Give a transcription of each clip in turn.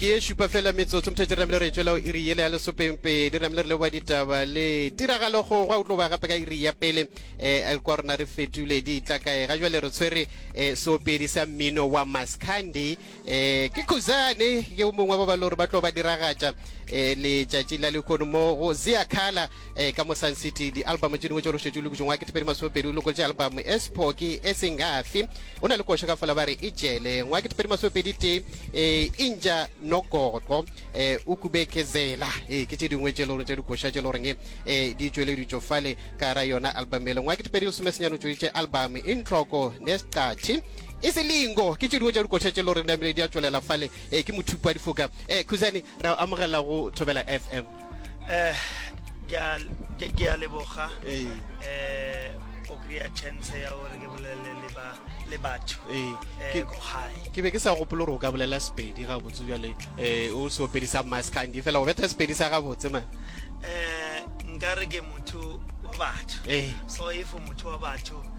ke e šupa fela metsotso motho di ramile re tšwela o iri yele ya lesopengpedi di ramile re leboa ditaba le tiragalo go gwa utlo ba gape ka iri ya pele um kwa rona re fetule di tla kae ga jale re tshwere um seopedi sa mmino wa mascandi Eh, ke Khuzane ke o mongwe ba ba lore ba tlo ba diragatša eh, letšatši la lekgono mo go Zia Khala eh, ka mo Sun City di-album tše dingwe tšo lošetše le kutšong wa ketepedi masomepedi o lokotše album e sephoki e sengafi o na le košo ka fola ba re e jele ngwa ketepedi masomepedi tee eh, inja nokoto eh, o kubeke zela eh, ke tše dingwe tše le gore tše dikoša tše le goreng eh, di tšweleditšo fale ka ra yona album ele ngwa ketepedi lesomesenyane o tšweditše album e ntloko ne seqatšhe E se lingo, ke tše dingwe tša dikoša tše le gore namile di a tšwelela fale. Eh, ke mothupi wa difoka. Eh, Khuzani, re amogela go Thobela FM. Eh, ke a, ke, ke a leboga. Eh. Eh, o kry-a chance ya gore ke bolele le ba le batho Eh, eh, ke- ko gae ke be ke sa gopolo gore o ka bolela sepedi gabotse bjale um o se opedi sa maskandi fela go betha sepedi sa gabotse man eh nka re ke motho wa batho Eh. so if motho wa batho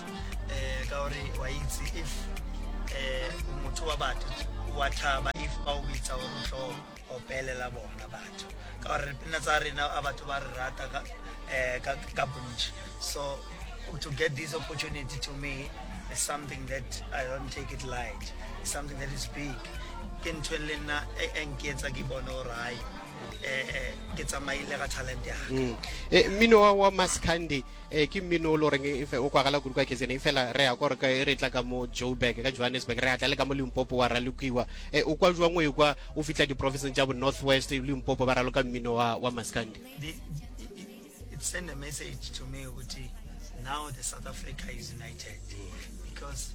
um ka gore wa itse if um motho wa batho wa tlhaba if ba o bitsa gore o tlo opelela bona batho ka gore dipina tsa rena a batho ba re rata ka eh, bontši so to get this opportunity to me is something that i don't take it light it's something that is big ke ntho le nna e, e nketsa ke bone gore hai um ke tsamaile ga talent yaka mm. eh, mmino wa maskandi ee ke mmino o le goreng e o kwagala kudu kwa kzn e fela re ya kore e re tla ka mo joburg ka johannesburg re ya tla le ka mo limpopo wa ralokiwa e o kwa jwang o ekwa o fitlha diprofenseng tša bo north west limpopo ba raloka mmino wa, wa maskandi send a message to me ukuthi now the south africa is united because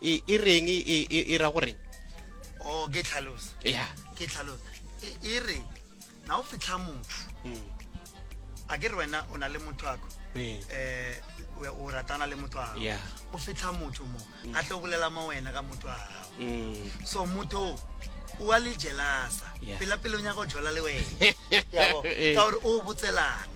E, e reng e, e, e, e ra goreng o oh, ke tlhalosa ya ke tlhalosa e, e re na o fitlha motho hmm. a ke re wena o na le motho ako um o ratana le motho wa gago o fitlha motho mo hmm. a tlo bolela mo wena ka motho wa gago hmm. so motho o wa le jelasa pela pele o nyaka go jola le wena ka gore o botselana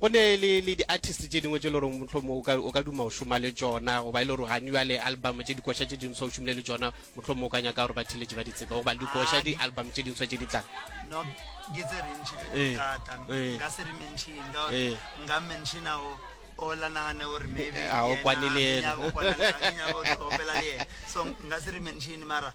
Go ne le, le di-artist tše dingwe tše le gore mohlomong o ka, o ka duma go šoma le tšona, goba e le gore ga new le album tše dikoša tše dinswa o šomile le tšona, mohlomong o ka nyaka gore batheletši ba di tsebe, goba dikoša, di-album tše dinswa tše di tlang. No, ke tse rentši tše di thata, nka se re mention ka gore nka mentioner o o la nagane gore maybe yena, a o kwane le yena, a ke nyake go tlhompela le yena, so nka se re mention mara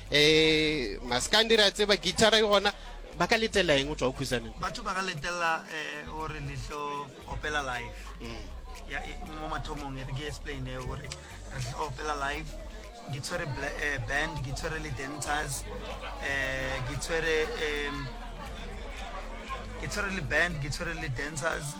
um maskandi re a tseba guitara e gona ba ka letela eng o tswa o khusaneng batho ba ka letela um gore letlo opela life mm. e, mo mathomong e re ke explain e gore re tlo opela life ke tshwere eh, band ke tshwere le dancers um ke tshwere um ke tshwere le band ke tshwere le dancers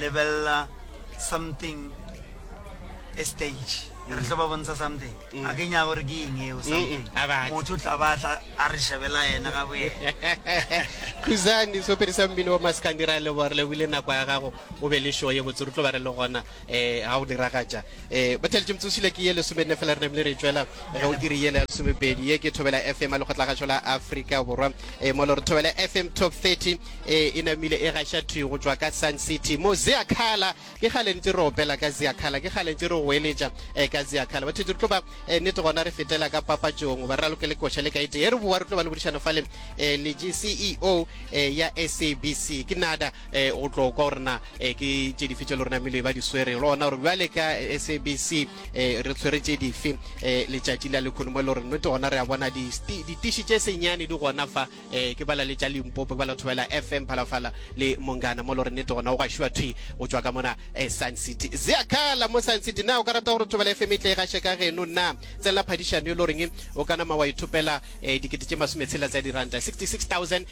lebelela something a stage re tlo ba bontsha something mm. a ke nya gore ke eng eo something mm. motho tla ba tla a re shebela yena ga boye khuzani so pedi sa mmino wa maskandira le bore le wile nako ya gago o be le show ye botse re tlo ba re le gona e ga go diragatša e batheletše motseosile ke ye lesomenne fela re namile re tšwela ge o iri yele ya lesomepedi ye ke thobela fm a lekgotlagašo la afrika borwa e mo le gore thobela fm top 30 e e namile e gaša thwi go tšwa ka sun city mo zeakhala ke gale ntse re opela ka zeakhala ke gale ntse re goeletša e ka zeakhala batheletše re tlo ba e nnete gona re fetela ka papatšong ba re raloke le koša le kaete e re bowa re tlo ba le bodišano fale e le ceo e ya sabc ke nada eh, o tlo kwa gore na eh, ke tše dife tše le rona mele ba di swere le gona gore bjale ka sabc eh, re tshwere tše dife eh, letšatši la lekhono mo e le gore nnete gona re a bona ditiši tše senyane di gona fa eh, ke bala le tša limpopo bala thobela fm phalafala le mongana mo e le gore nnete gona o gašiwa thwi go tšwa ka mona eh, sun city zeakala mo sun city na o ka rata gore thobela fm e tle e gaše ka geno na tselela phadišano e le goreng o ka nama wa ithopela eh, dikete tše masometshela tsa diranta 66000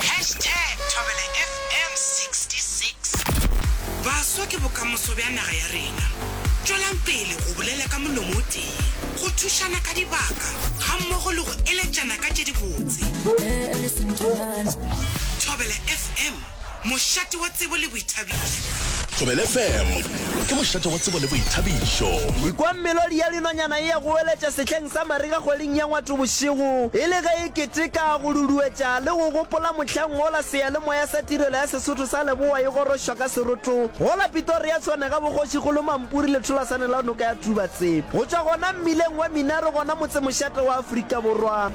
Hashtag ThobelaFM 66. Baswa ke bokamoso bja naga ya rena. Tšwelang pele go bolela ka molomo o tee, go thušana ka dibaka gammogo le go eletšana ka tše dibotse. Thobela FM. Mošate wa tsebo le boithabišo. Thobela FM ke mošate wa tsebo le boithabišo. Ikwa melodi ya dinonyana e ya go weletša sehleng sa mariga kgweding ya Ngwatho bošego e le ge e keteka, go duduetša le go gopola mohlang wola seyalemoya sa Tirelo ya Sesotho sa Leboa e gorošwa ka seroto go la Pitoria Tshwane ga Bokgošikgolo Mampuri letholasane la noka ya Tubatse go tšwa gona mmileng wa Minaro gona motsemošate wa Afrika Borwa.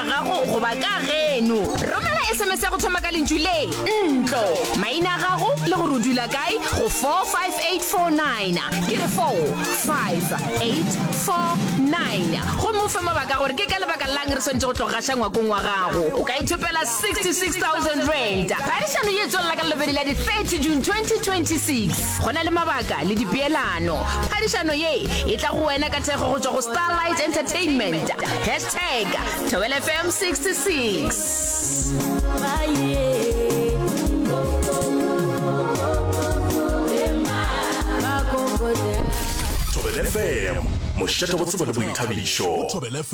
ya gago goba ka geno. Romela SMS ya go thoma ka lentšu le, ntlo, maina a gago le gore o dula kae go 45849. Ke re 45849 gomme o fe mabaka gore ke ka lebaka lang re swanetše go tlo gaša ngwakong wa gago. O ka ithopela 66,000 rand. Phadišano ye tswelela ka lelobedi la di-30 June 2026. Go na le mabaka le dipeelano. Phadišano ye e tla go wena ka thekgo go tšwa go Starlight Entertainment. Tag, Thobela FM 66. Thobela FM, mošate go tsebo le boithabišo.